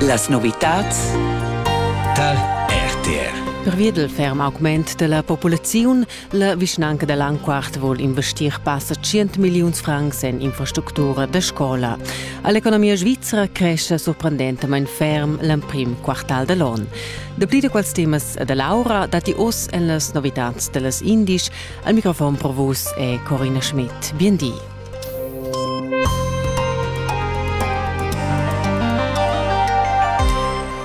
Las novitads tar RTR. Pervia dal ferm augment da la populaziun, la vischnanca da Langquart vul investir passa 100 milliuns francs en infrastructura da scola. All'economia svizra cresce sorprendentamain ferm l'emprim quartal da l'on. Dapli da quels temas da Laura datti oz en las novitads da las indisch. Al microfon pro vus è Corina Schmidt. Bien di.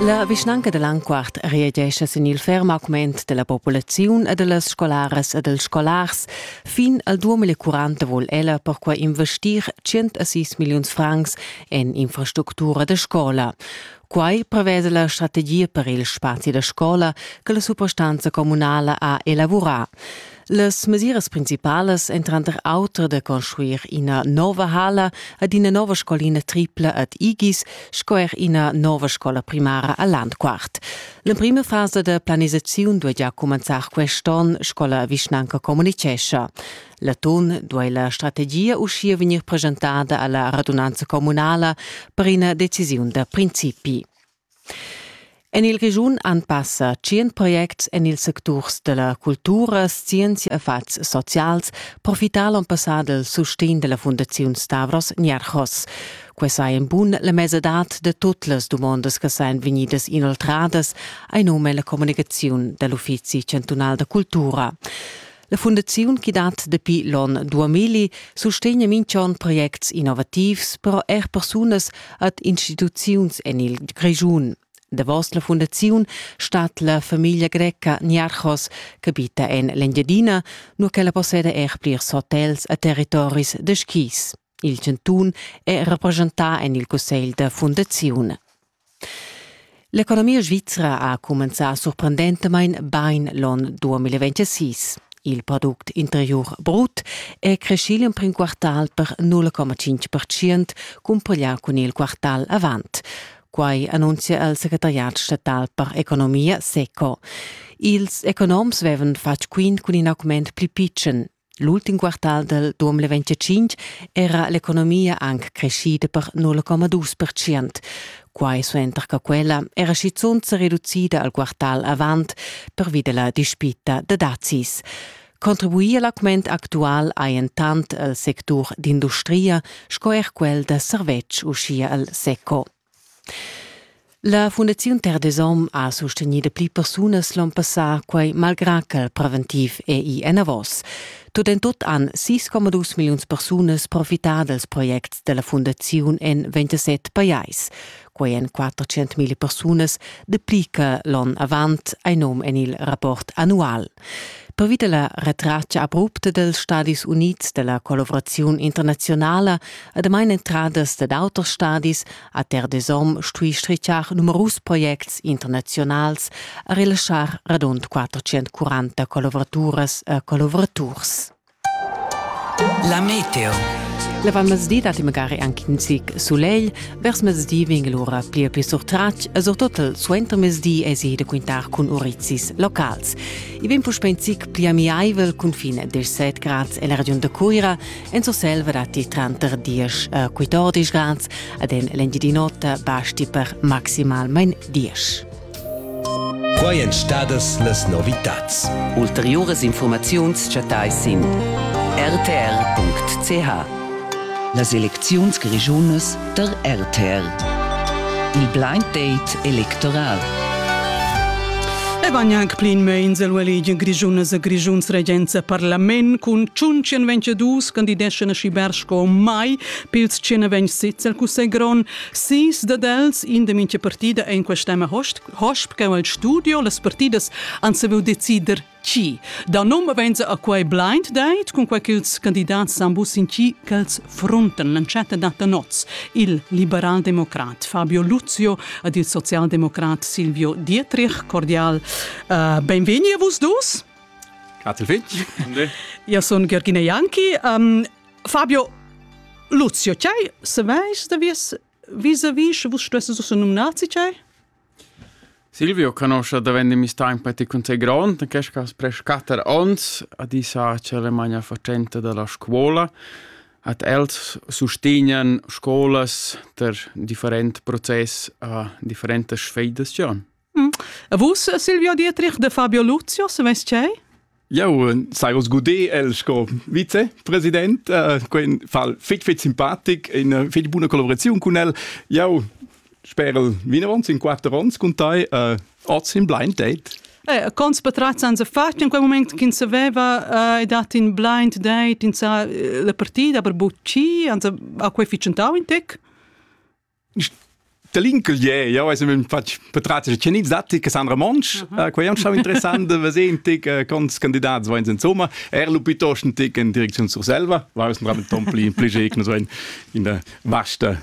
La vischnanca da Landquart reagescha sin il ferm augment della populaziun e dellas scolaras e dels scolars. Fin al 2040 vuol ella perquai investir 106 milliuns francs en infrastructura da scola. Quai prevede la strategia per il spazi da scola che la suprastanza comunala ha elaborà. Las mesiras principalas èn tranter auter da construir ina nova hala ad ina nova scolina tripla ad Igis sco er ina nova scola primara a Landquart. L'emprima fasa da planisaziun duai gia cumenzar quest onn, sco la vischnanca communitgescha. L'atun duai la strategia uschia vegnir presentada a la radunanza communala per ina decisiun da principi. En il Grischun han passa tschient projects en ils secturs da la cultura, scienza e fatgs socials profità l'onn passà dal sustegn da la Fundaziun Stavros Nierchos. Quai saja in bun la mesadad da tut las dumondas che sajan vegnidas inoltradas, hai num en la communicaziun da l'Uffizi chantunal da cultura. La fundaziun chi dat dapi l'on 2000 sustegna minch'on projects innovativs, però eir persunas ad instituziuns en il Grischun. Davos la fundaziun stat la famiglia greca Niarchos, ch'abita en l'Engiadina, nur ch'ella posseda er plirs hotels a territoris da skis. Il chantun è represchentà en il cussegl da fundaziun. L'economia svizra ha cumenzà surprendentamain bain l'onn 2026. Il product interiur brut è creschì l'emprim quartal per 0,5% cumpareglià cun il quartal avant. Quai annunzia il secretariat statal per economia SECO. Ils economs avevan fatg quint cun in augment pli pitschen. L'ultim quartal del 2025 era l'economia anc creschida per 0,2%. Quai suenter che quella era schizunt se reducida al quartal avant pervi della dispita da dazis. Contribuir l'augment actual ha entant el sectur d'industria sco er quel da servetsch uschia al SECO. La Fundaziun Terdesom ha sustegni da pli persunas l'on passà, quai malgrà ch'el preventiv è ì enavos. Tut en tut han 6,2 milliuns persunas profità dals projects da la fundaziun en 27 pajais. Quai èn 400 000 persunas dapli che l'onn avant, hai num en il rapport annual. Pervi della retratscha abrupta dels Stadis Unids della collaboraziun internazionala ademain entradas dad auters stadis a Terre des Hommes stui strichar numerus projects internazionals a relaschar radund 440 collaboraturas e collaboraturs. La meteo. La valmezdi datti magari anche in zic sulegl. Vers mezdi vegn lura pli e pli surtratg e surtut suenter mezdi èsi da quintar cun urizis locals. I vegn puspè in zic pli amiaivel cun fin a 17 grads en la regiun da Cuira. En Surselva datti tranter 10 e 14 grads, ad en l'engiadin'ota basti per maximalmain 10. Quai èn stadas las novitads. Ulteriuras infurmaziuns chattais sin rtr.ch. Las elecziuns grischunas tar rtr. Il blind date electoral. E van anc plin meins el ueligi grischunas e grischuns regenza parlament cun tschun tschien ventg dus candideschan a Schiberg sco mai pils tschien ventg sez el cussegl grond Sis dad els, in da mintga partida en quest'emma hosp cheu el studio. Las partidas han saviu decider chi. Da num venza a quei blind date, cun quei ch'ils candidats san busin chi ch'els frunten l'entschatta data noz. Il liberaldemocrat Fabio Luzio ed il socialdemocrat Silvio Dietrich. Cordial uh, benvegni a vus dus. Grazie Fitch. Io sono Georgina Janki. Um, Fabio Luzio Chai, se veis da vies vis-a-vis, sche vus stesses ussa nominati Chai? Silvio conosce davent mi sta in pati con sei grond, che scas pre scatter ons, a disa c'è la magna facente della scuola, at els sustegnan scolas ter different process a differentes sfeidazion. E vus, Silvio Dietrich de Fabio Lucios, vest cei? Jau eh, sai oz gudé el sco vicepresident, uh, quei fa fitg fitg simpatic, in fitg buna collaboraziun cun el. Jau sper el vinavant in quatter ons cun tai, uh, oz in blind date. Eh, cons patrazzan se fat in quel moment ch'in saveva eh, dat in blind date in sa eh, la partida per bucci, anzi a quei ficentau in tec? Da l'inclegier, jau hai sempre fatg patratgs tschenits datti, Cassandra Monsch, mhm. äh, quai è stau interessant da vedere in tic äh, quants candidats vain insomma, er lu piuttost in tic in direcziun Surselva, war ist ein tom pli pli in der vasta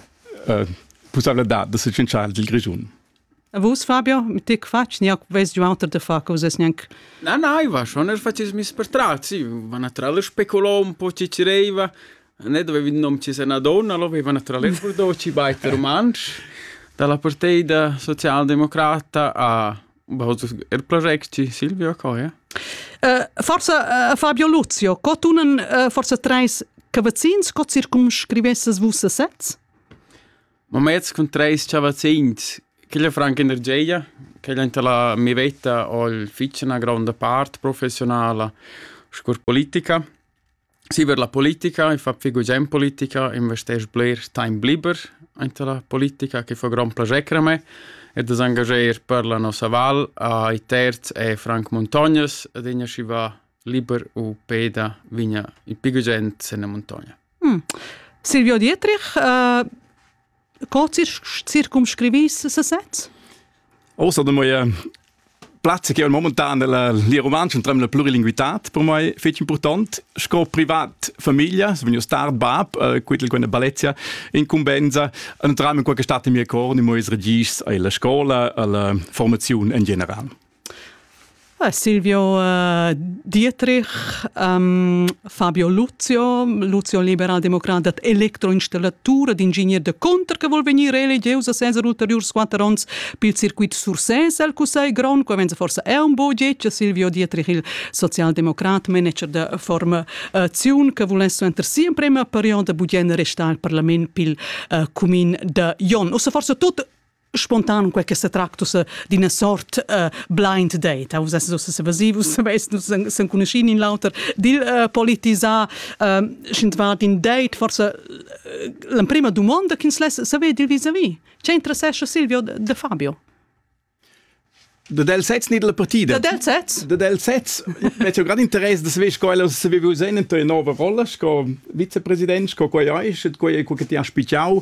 äh, possibilità da se vincere il Grischun. A vus, Fabio, mit ti quatsch niac vess giu auter da far che vus nianc. Na, na, Iva, schon el facismis per tral, sì, va natural speculò un po ci ci reiva, ne dovevi il nome ci se una donna, lo aveva naturalmente guardò ci baita romansch, dalla parteida socialdemocrata a er progetto ci Silvio Coia. Uh, forse uh, Fabio Luzio, co tunen uh, forse treis cavazzins, co circumscrivesses vus a sets? Moments cun treis chavazzins, quella franca energia, quella enta la mia veta ho'l fich üna gronda part professionala scu'l politica. Siver la politica, i fa pü gugent politica, investesc bler temp liber anta la politica che fa grond plager a me e da s'angager per la nossa val a i terz è Frank Muntognas ed igna schi va liber u peda vigna i pü gugent sen la muntogna. Hm. Silvio Dietrich, äh, co circumscrivis sesez? Außer de moie Platz che momentan della lia romanza un tremla plurilinguitat per moi fece important sco privat famiglia se vegno star bab äh, quittel quella balezia incumbenza entram in qualche stat in mia cor di mois regis alla scuola alla formazione in general Silvio uh, Dietrich, um, Fabio Luzio, Luzio liberaldemocrat dat electroinstallatura d'ingegner de conter che vuol venire elegeus a senza ulteriurs quatter onns pil circuit Sursès al Cussegl Grond, che venza forse è un budget, Silvio Dietrich, il socialdemocrat, manager de formazione, che volesse enter sempre in periodo budgen restar al parlament pil uh, cumin de Jon. O se forse tot spontan quel che se tractus d'ina sort uh, blind date vus esses ussa sevasivus saveis nus sen conoscin in l'auter dil uh, politisar uh, schint vart in date forse l'emprima domanda che ins less saver dil vis-a-vis ce interessesce Silvio de Fabio Dat el sez ni dalla partida? Dat el sez? Dat el sez. Mez ho grand interess da saver sco el ha saviu user in tua nova rolla sco vicepresident, sco quei ei, sche quei ei quel che ti has spichau,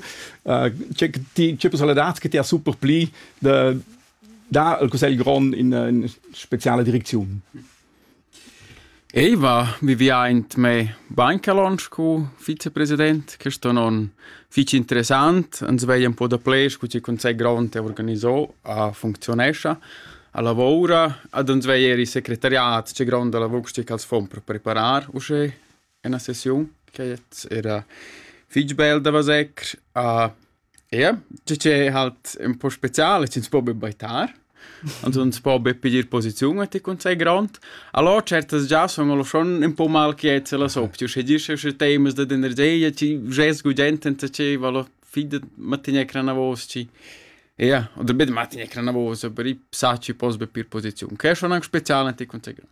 che ti che personalitad che ti ha super pli da dar al cussegl grond in, in speciala direcziun. Ei va vivià aint mê bain che lonsch cun vicepresident. Quist on on fich interessant. Ans veglia ün po dapler scu chi Cunsegl grond ha organisà, ha funcziunescha a lavoura. Ad ans veglia eir i secretariat, tge gronda lavur chi als fon per preparar uschè. Ena sesiun ch'ets eira fich bel da veser a eir tgi che halt ün po spezial e chi'ns po be baitar, ans ans po be piglier posiziun a ti cun sai grond. Alò tschertas già sun alò schon ün po malquiets e las opti, uschè dir sche usche taimas dad energia, chi vschess gugent senza chi val fin dad mantgnair cranavos, chi Ie, oder be da mantgnair cranavos, aber i sa chi poss be pir posiziun. Quai es schon anc spezial a ti cun sai grond.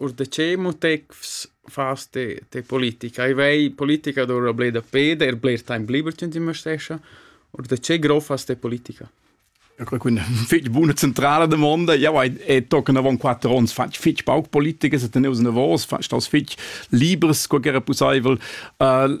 Or da che motets fas te te politica? I vei politica dovrà bler da peder, er bler taimp liber ch'ün t'investescha. Or da che grof fas te politica? Eu creu quindi fich buna centrala damonda. Jau hai e tocca avon quatter ons fatg fich pauc politica, se teneus navos, fatg staus fich libers, sco ch'era pussaivel. Uh,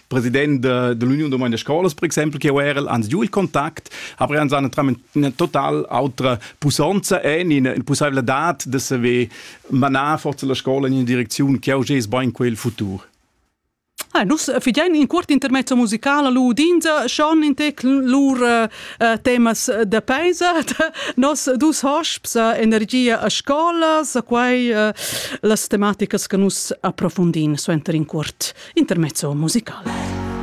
president de, de l'Union Domani de Scolas, per exempel, che era ans giù il contact, aber ans an una total autra pusanza e in in possibilità de saver manar forza la scola in una direczione che oggi è ben quel futur. Ah, nus fidein in cuort intermezzo musicala lu udinza schon in tec lur uh, uh, temas da paisa nos dus hosps energia a scola sa quai uh, las tematicas che nus approfundin suenter in curt intermezzo musicale